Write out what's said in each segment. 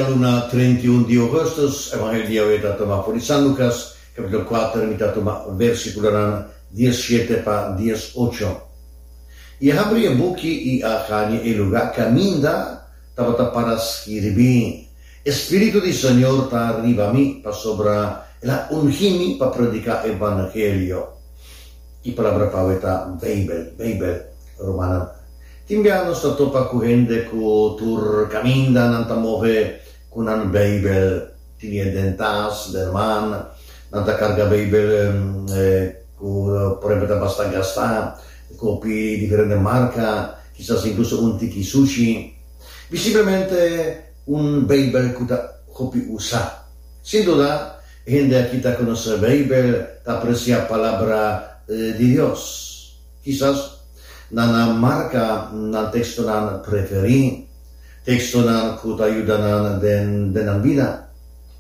E luna trenta i un di Augustus, Evangelio di Yahweh ta tuma for di San Lucas, capitulo cuater, mi ta tuma versiculonan dies shete pa dies ocho. I a habri e buki i a caña e lugar caminda tabata para skirbi, E spiritu di Señor ta riba mi, pasobra el a ungi mi pa predica e vangelio. I palabra pawe ta Bijbel, Bijbel, rumannan. Tin bia nos ta topa ku hende ku tur kaminda nan ta move ku nan Beibel tinié den tas den man. Nan ta karga Beibel ku por ejemplo ta basta gastá, kopi diferente marka, kisas inkluso un tiki sushi. Bi simplemente un Beibel ku ta hopi usa. Sin duda, e hende aki ta konosé Beibel, ta apresiá Palabra di Dios. Kisas nan a marka nan tekstonan preferí, tekstonan ku ta yuda nan den nan bida,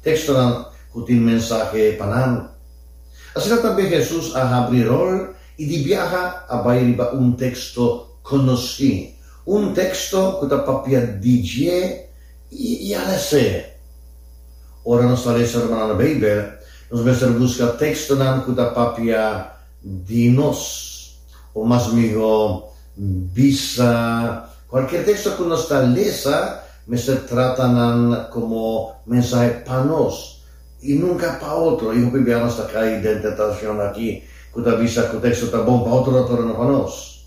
tekstonan ku tin mensahe pa nan. Asina tambe Hesus a habri rol i di biaha a bai riba un teksto konosí, un teksto ku ta papia di dje i ala esei. Ora nos ta lesa riba nan Beibel, nos mester buska tekstonan ku ta papia di nos, o mas mihó bisa, Cualkier texto cu nos ta lesa mester trata nan como mensahe pa nos y nunca pa otro. Y hopi bia nos ta cai den tentacion aki cu ta bisa cu texto ta bon pa otronan pero no pa nos.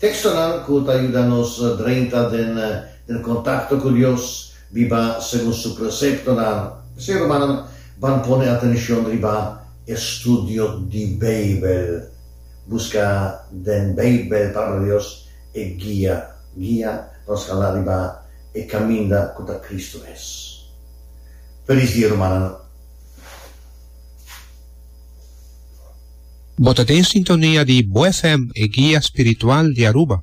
Textonan cu ta yuda nos drenta den contacto cu Dios, Biba segun su preseptonan. P'esei, rumannan, ban pone atenshon riba e studio di Beibel. Buska den Beibel, Palabra di Dios, e guia, guia, pa nos hala riba e kaminda ku ta Kristu mes. Felis dia, rumannan! Bo ta den sintonia di Bo FM, e guia spiritual di Aruba.